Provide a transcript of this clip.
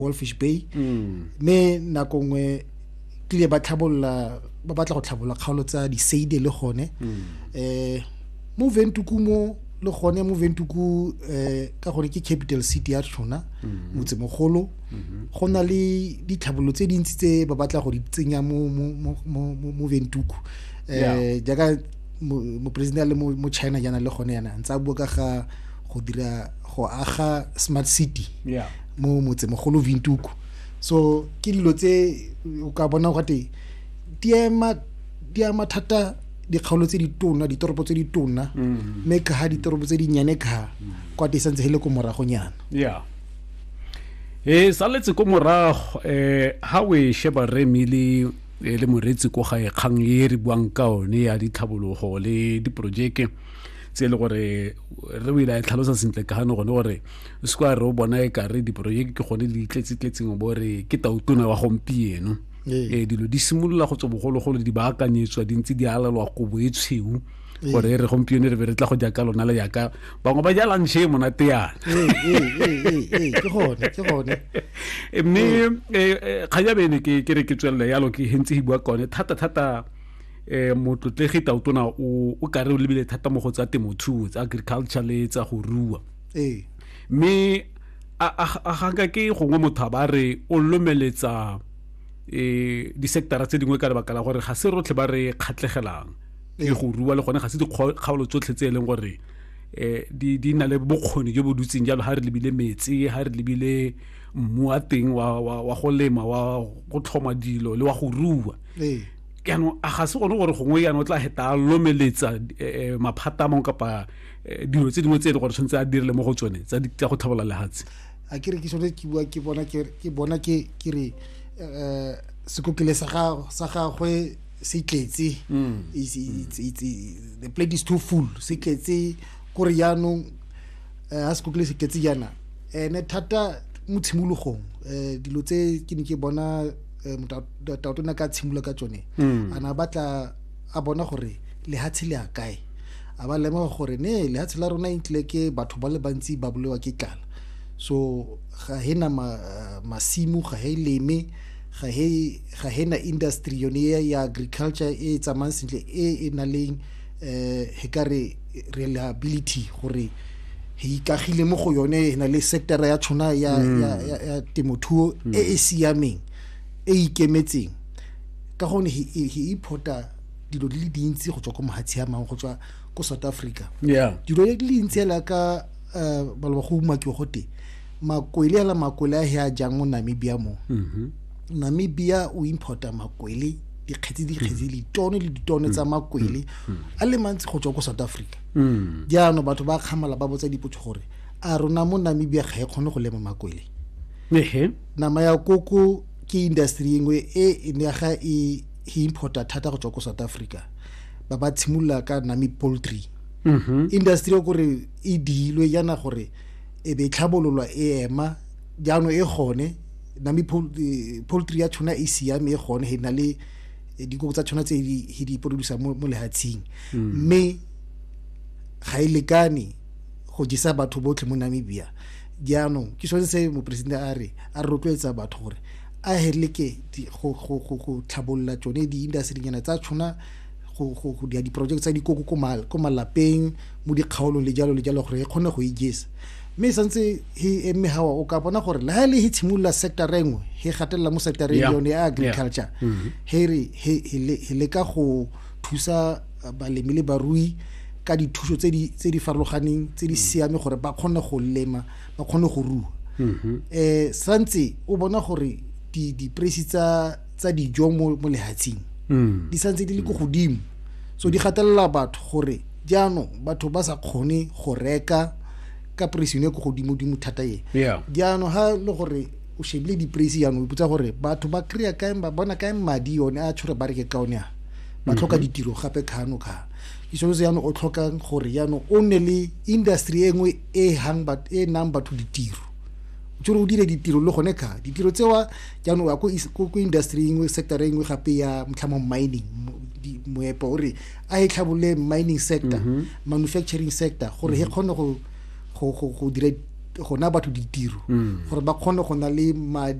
wolfish bay mme nako nngwe tlile ba tlhabolola ba batla go tlhabolola kgaolo tsa diseide le gone um mo ventuku mo le gone mo ventuku um ka gore ke capital city ya rona motsemogolo go na le ditlhabololo tse dintsi tse ba batla go di tsenya mo ventuku um jaaka moporesidente a le mo china jaana le gone yana ntse a bua ka ga go dira go aga smart city yeah. mo motsemogolo vintuku so ke dilo tse o ka bona gate di ema di ama thata dikgaolo tse di tona ditoropo tse di tona mm-hmm. mme ka ga ditoropo tse di nnyane ka kwa te santse le ko moragonyana yeah e saletse ko morago um ha o e sheba re mele e le moretsi ko gae kgang e re buang ka one ya ditlhabologo le diporojeke tse e le gore re o ile a e tlhalosa sentle ka gane gone gore o se kwa re o bona e kare diporojeke ke gone di itletse-tletseng o bo re ke tautona wa gompieno um dilo di simolola go tswa bogologolo di baakanyetswa di ntse di alelwa kobo e tshweu gore e re gompieno re be re tla go jaka lona le jaka bangwe ba jalang ntšhe e monate yana mme ga jabe ene ke re ke tswelele yalo ke hentse e bua kone thata-thata um motlotlegi tautona o kare o lebile thata mo go tsa temothuo tsa agriculture le tsa go rua ee mme a ganka ke gongwe motho a ba re o lomeletsa um disectara tse dingwe ka lebaka la gore ga se rotlhe ba re kgatlhegelang e go rua le gone ga se dikgaolo tsotlhe tse e leng gore um di di na le bokgoni jo bo dutseng jalo ga re lebile metsi ga re lebile mmu wa teng wa wa wa go lema wa go tlhoma dilo le wa go rua ee jaanong a ga se gone gore gongwe jaanong o tla heta a lomeletsa um maphata a mangwe kapa eh, dilo tse dingwe tse e le gore tshwanetse a dirile mo go tsone tsa go tlhabolola lehatshe a ke re ke sone ke bua ke bona ke bona ke ke re um sekokele sa gagwe se tletse mm. the plate is too full se tletse kore jaanong um eh, a sekokele se tletse jaana ene thata mo tshimologong um dilo tse ke ne ke bona um eh, motaotone ka tshimolola ka tsone mm. a na batla a bona gore lehatshe le a kae a ba lemoga gore ne lehatshe la rona intlile ke batho ba le bantsi ba bolewa ke tlala so ga he na ma, uh, masimo ga he leme ga he ga he na industry yone ya, ya agriculture e e tsamayang sentle e e na leng um he ka re reliability gore he ikagile mo go yone e na le sectara ya tshwana ya, ya, ya, ya temothuo e e siameng e ikemetseng ka gonne he, he, he importa dilo di le dintsi go tswa ko mohatshi a mangwe go tswa ko south africa yeah dilo di le dintsi ela ka eh, ba le ba go umakiwa go te makwele ela makwele a he a jang mo namibia mo mm-hmm. namibia o importa makwele dikgetsi dikgetsi mm. ditone le ditone tsa mm. makwele mm. a le mantsi go tswa ko south africa jaanong batho ba kgamala ba botsa dipotso gore a rona mo namibia ga e kgone go lema makwele nama ya koko ke industry engwe e ne ga e importa thata go tswa ko south africa ba ba tshimolola ka nami poultry mm-hmm. industry o kore e diilwe yana gore e be tlhabololwa e ema jaanong e gone nami e, poultry ya tshwana e siame e gone e na le e, dikoko tsa tshwana tse di di producer mo lehatsheng mm. mme ga e lekane go jisa batho botlhe mo namibia jaanong ke sone se moporesidente a re a rotloetsa batho gore a heleke go tlhabolola tsone di-industrynyana tsa tshwana go dira diporojeke tsa dikoko ko malapeng mo dikgaolong le jalo le jalo gore e kgone go ijesa mme e santse he eme gawa o ka bona gore le ga e le he tshimolola sector e nngwe he gatelela mo sector e yone ya agriculture mm-hmm. he re he leka go thusa balemi le barui ka dithuso tse di tse di farologaneng tse di mm. siame gore ba kgone go lema ba kgone go rua um santse o bona gore di-price tsa tsa dijo mo lehatsheng mm. di santse di le ko godimo so di gatelela batho gore jaanong batho ba sa kgone go reka ka price yone ko godimo-dimo thata e jaanong ha le gore o shebile di-price jaanong o iputsa gore batho ba kry-a kae ba bona kae madi one a tshwere ba reke ka one a ba tlhoka mhm. ditiro gape kgano kgano ke selo se yanong o tlhokang gore yanong o nne le industry e nngwe e e nang batho ditiro tsore o dire ditiro le gone kga ditiro tsewa jaanong ya ko industry engwe sector e nngwe gape ya motlhamo mining moepo o re a e tlhabolole mining sector mhm. manufacturing sector gore he mhm. kgone go dira gona batho ditiro mm. gore ba kgone go na le madi